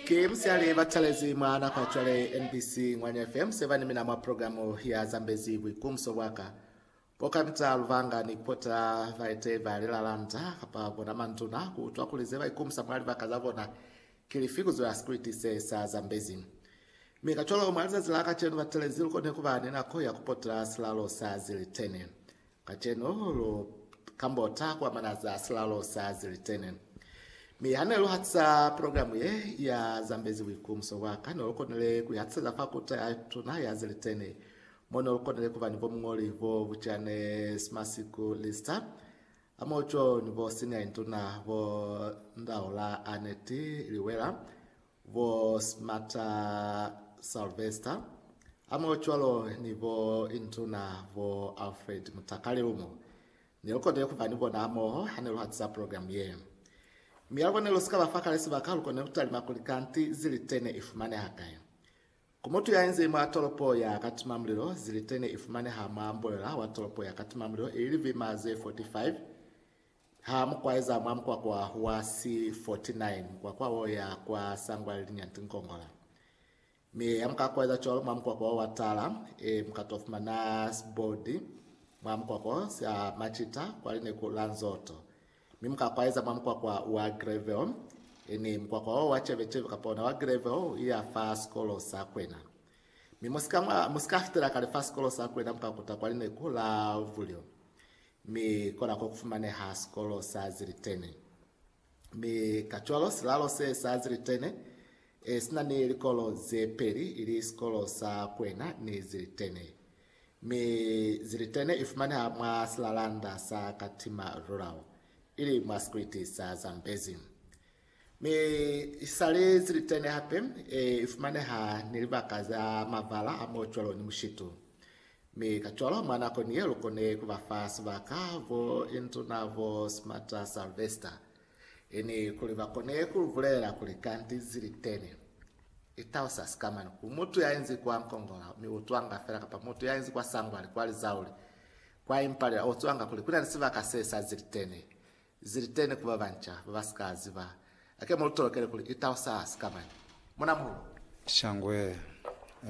Ki musiyali batalezi mwa nako ya cwale NBC Ngwanya FM seba ni mina mwa programu ya Zambezi Buikumso Bwaka. Bo Kamita Luvanga ni Kota baite ba lilalanda kapa bona manduna ku utwa kuli ze ba ikumusa mwa libaka za bona ki lifi ku zwela sikriti se sa Zambezi. Mi kacwalo mwa lizazi la kacenu batalezi lu kone kuba ni nako ya kupota silalo sa zilitene. Kacenu lu kambota kwa manazi a silalo sa Zilitene, mi ha ne lu hatisa progilamu ye ya zambezi buikumuso bwa ka, ne lu konile ku ihatiseza fa Kuta ya Tuna ya Zilitene, mo ne lu konile ku ba ni bomuñoli bo buca ne si masiku Lister, Amoco, ni bo Senior Induna bo Ndaula Annette Liwela, bo Smarter Sylvester hamoho cwalo ni bo Intuna bo Alfred Mutakale lumo ne lu konile ku ba ni bona hamoho ha ne lu hatiza programu ye. Mi habo ne lu si ka ba fa kale sibaka, lu konile ku talima kuli kanti zilite ne i fumaneha kai. Ku mutu ya inzezi mwa tolopo ya Katimamulilo, zilite ne i fumaneha mwa mbolela wa tolopo ya Katimamulilo, ili libima ze 45 Ha mu kwaeza mwa mukwakwa wa si 49, mukwakwa wo ya kwa sangwa le linyanti Nkongola. Mi ha mu ka kwaeza cwalo mwa mukwakwa wo wa tala, e, mu ka to fumana siboldi mwa mukwakwa sa macita kwa lineku la Nzoto. Mi mu ka kwaeza mwa mukwakwa wa Greville, e, ni mukwakwa wo wa ceveceve kapa ona wa Greville u iya fa sikolo sa kwena. Mi mu si ka, mu si ka fitela kale fa sikolo sa kwena mu ka kuta kwa lineku la Vulyo. Mi kona ko kufumaneha sikolo sa Zilitene. Mi kacwalo silalo se sa Zilitene e sina ni likolo ze peli, ili sikolo sa Kwena ni Zilitene. Mi Zilitene i fumaneha mwa silalanda sa Katima Rural, ili mwa sikwiti sa Zambezi. Mi i sa li zilitene hape, i fumaneha ni libaka za mabala a mo cwalo ni mushitu. Mi kacwalo mwa nakoni ye lu kone ku ba fa sibaka bo indu na bo Smarter Salvester, i ni kuli ba kone ku lu bulelela kuli kanti zilitene. I tausa sikamani ku mutu ya inzi kwa Nkongola, mi u twanga fela, kapa mutu ya inzi kwa Sangwali, kwa Lizauli, kwa Impalila, u twanga kuli ku na ni sibaka se sa zilitene. Ziliteni ku babanca baba si ka ziba. Ake mu lu tolokele kuli itao sa sika mani. Muna muhulu. Shangwe.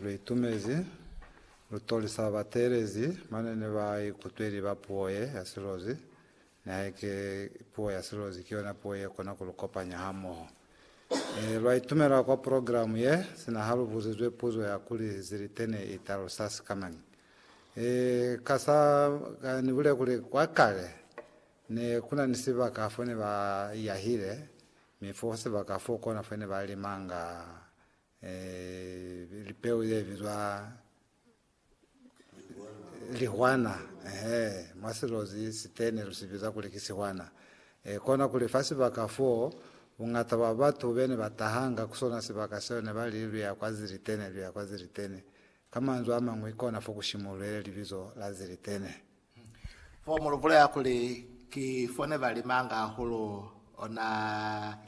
Lu itumezi lutoli sa ba teelezi mane ne ba ikutweli ba puo ye ya silozi. Nihaike puo ya silozi ki yona puo ye kona ku lu kopanya hamoho. E, lwa itumela kwa progilamu ye, sina ha lu buzizwe puzo ya kuli Ziliteni i talusa sika mani. E, ka sa, ka ni bule kuli, kwa kale, Ne ku na ni sibaka fo ne ba yahile, mi fo sibaka fo kona fo ne ba limanga eh, lipeu ye bizwa lihwana ehe mwa silozi sitene lu si biza kuli ki sihwana e kona kuli fa sibaka fo bungata bwa batu bene ba tahanga ku sona sibaka seo ne ba li luya kwa zilitene luya kwa zilitene ka manzwi a mañwi kona fo ku shimulwele libizo la zilitene Fo mu lu bulela kuli, Ki fone ba limanga hahulu ona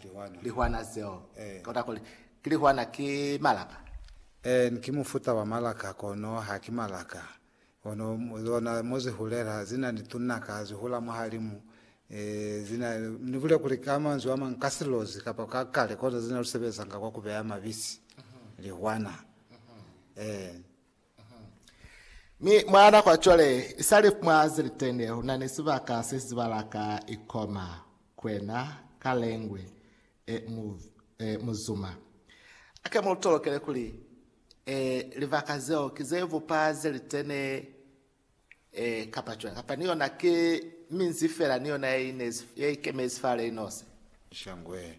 lihwana zeo. Kota kuli, ki lihwana, ki malaka. Een, ki mufuta wa malaka, kono ha ki malaka. Kono zona mo zi hulela, zi na ni tunaka, zi hula mwahalimu. Zi na, ni bule kuli ka manzwi a mañi, ka silozi kapa ka kale, kono zi na lu sebezanga kwa ku beya mabisi. Lihwana. Een. Mi mwa nako ya cwale, isali mwa zilitende, luna ni sibaka se si zibala ka ikoma, kwena, ka lengwe, e, mu, e, muzuma. Ake mu lu tolokele kuli, e, libaka zeo ki ze bupa zilitene Ee, kapa cwañi? Kapa ni yona ki minzi fela ni yona ye ikemezi fa le nosi? Shangwe.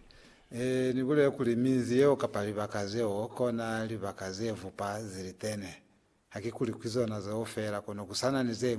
Ee, ni bulele kuli minzi yeo kapa libaka zeo kona libaka ze fupa zilitene. Hakikuli ki zona zeo fela, kono ku sa na ni ze ñwi.